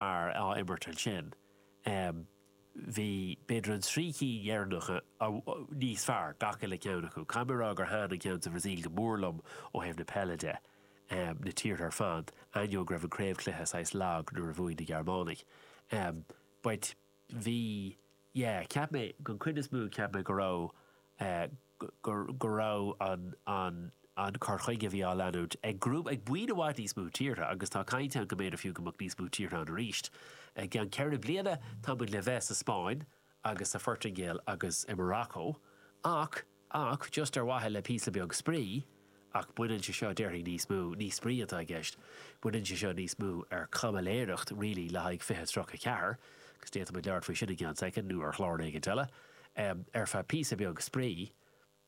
mar á imirt ansin. Bhí, b'fhéidir, an trí cinn deireanacha níos fearr, gach uile ceann acu. Caithfidh mé a rá gur thaitin an ceann sa Bhrasaíl go mór liom ó thaobh na peile de, na tíortha ar fad, ainneoin go raibh an craobhchluiche saghas lag nuair a bhuaigh na Gearmánaigh. B'ait. bhí, yeah, cheap mé, don chuid is mó, cheap mé go raibh, eh, go, go raibh an, an, an cur chuige a bhí á leanúint ag grúpa, ag buíon i bhfad níos mó tíortha agus tá caint ann go mb'fhéidir fiú go mbeadh níos mó tíortha ann arís i gceann ceithre bliana, tá muid le bheith sa Spáinn agus sa Phortaingéil agus i Morocco ach. Ach just ar mhaithe le píosa beag spraoi, ach baineann sé seo, déarfainn, níos mó, ní spraoi atá i gceist, baineann sé seo níos mó ar chaimiléireacht really le haghaidh 2034, agus d'fhéadfadh muid labhairt faoi sin i gceann soicind nó ar chlár éicint eile, ar feadh píosa beag spraoi,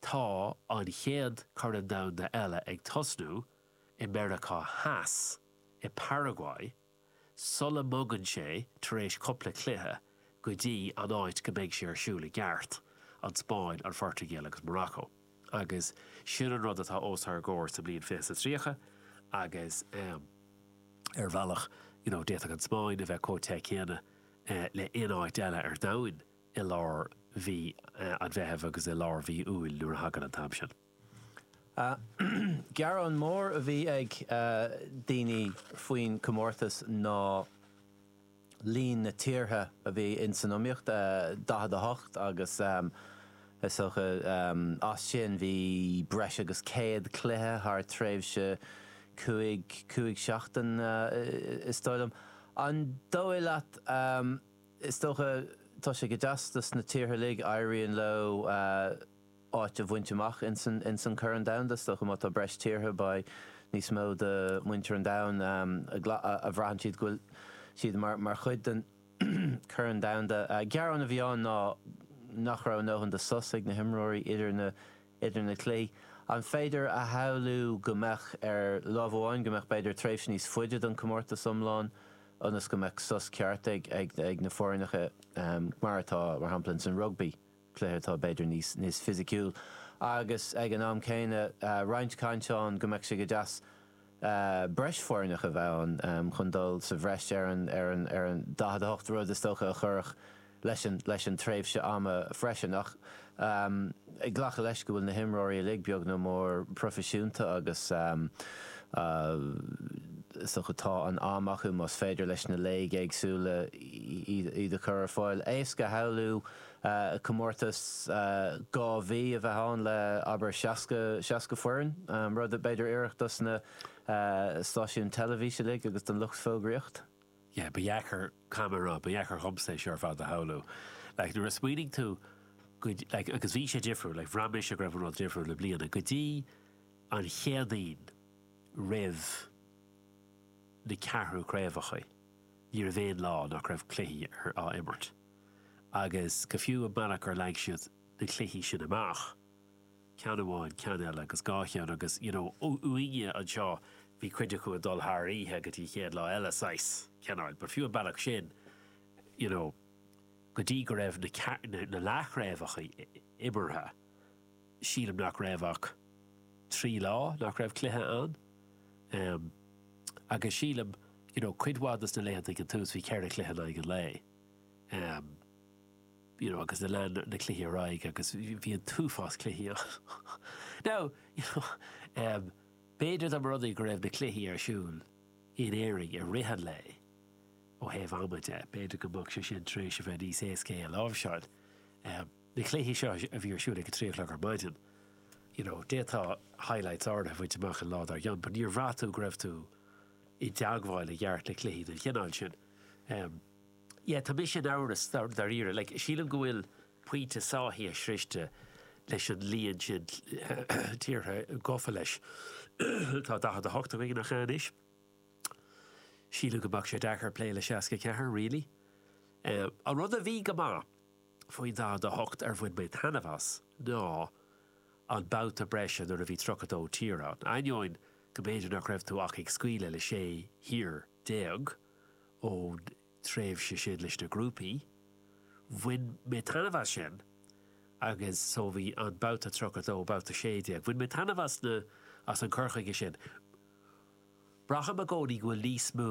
tá an chéad Chorn Domhanda eile ag tosnú i Meiriceá Theas, i bParaguay. sula mbogann sé, tar éis cupla cluiche, go dtí an áit go mbeidh sé ar siúl i gceart, an Spáinn, an Phortaingéil agus Morocco. Agus sin an rud atá os ár gcomhair sa mbliain fiche is a tríocha agus ar bhealach, you know, d'fhéadfadh an Spáinn a bheith chomh te céanna le aon áit eile ar domhan i lár mhí an Mheithimh agus i lár mhí Iúil nuair a thagann an t-am sin. Gearán mór a bhí ag daoine faoin chomórtas ná líon na tíortha a bhí ins san iomaíocht, 48, agus is dócha as sin bhí breis agus 100 cluiche thar tréimhse cúig, cúig seachtain is dóigh liom. An dóigh leat, is dócha, tá sé go deas dos na tíortha uilig, éiríonn leo, áit a bhaint amach ins an Corn Domhanda. Is dócha má tá breis tíortha, beidh níos mó de mhuintir an domhain a bhraitheann siad go bhfuil siad mar chuid den Chorn Domhanda. Gearán a bhí ann ná nach raibh a ndóthain de sos ag na himreoirí idir na cluichí. An féidir a shamhlú go mbeadh, ar láimh amháin, go mbeadh b'fhéidir tréimhse níos faide don comórtas iomlán ionas go mbeadh sos ceart ag na foirneacha, mar atá, mar shampla, ins an rugbaí? cluiche atá b'fhéidir níos fisiciúil agus ag an am céanna roinnt cainte ann go mbeadh sé go deas breis foirneach a bheith ann chun dul sa bhreis ar an 48, rud is dócha a chuirfeadh leis an tréimhse ama freisin. Ach ag glacadh leis go bhfuil na himreoirí uilig, beag ná mór, proifisiúnta agus is dócha tá an am acu más féidir leis na léigeanna éagsúla iad a chur ar fáil, éasca a shamhlú comórtas dhá mhí a bheith ann le, abair, 60, seasca foireann, rud, b'fhéidir, tarraingteach dos na stáisiúin teilifíse uilig agus don lucht fógraíochta. yeah, ba dheacair, caithim a rá, ba dheacair dhomsa é sin ar fad a shamhlú. Like, nuair a smaoiníonn tú go, like, agus bhí sé difriúil, like, bhraith mise go raibh an rud difriúil i mbliana, go dtí an Chéadaoin roimh na ceathrú craobhachaí, ní raibh aon lá nach raibh cluichí ar, á imirt. agus go fiú an bealach ar leag siad na cluichí sin amach, ceann amháin, ceann eile agus dhá cheann agus you know uainne anseo bhí cuid acu ag dul thar oíche go dtí an chéad lá eile saghas, cineáil, but fiú an bealach sin you know go dtí go raibh na na leathchraobhachaí imeartha sílim nach raibh ach trí lá nach raibh cluiche ann ehm agus sílim you know cuid mhaith de na laethanta ag an tús bhí ceithre chluiche in aghaidh an lae. you know agus lean na cluichí ar aghaidh agus bhí an t-uafás cluichí ann now you know b'fhéidir dá mba rud é go raibh na cluichí ar siúl in Éirinn i rith an lae ó thaobh ama de b'fhéidir go mbeadh sé sin tar éis a bheith níos éascaí é a láimhseáil na cluichí seo a bhí ar siúl ag a trí a chlog ar maidin you know d'fhéadfá highlights áirithe a fháil amach an lá dár gcionn but níor bhraith tú go raibh tú i dteagmháil i gceart le cluichí den chineál sin. Em. Yeah, tá mise in amhras, dáiríre. Like, sílim go bhfuil pointe sáithithe sroiste leis an líon sin tíortha gafa leis. Tá 48 againn, nach ea anois? Sílim go mbeadh sé deacair plé le 64, really. Em. An rud a bhí go maith faoin 48 ar bhain mé taitneamh as ná an babhta breise nuair a bhí 32 tír ann. Ainneoin go mb'fhéidir nach raibh tú ach ag scaoileadh le sé thír, déag ón tréimhse sin leis na grúpaí. Bhain mé taitneamh as sin agus so bhí an babhta tríocha dó, babhta sé déag, bhain mé taitneamh as na, as an cur chuige sin. Braithim i gcónaí go bhfuil níos mó,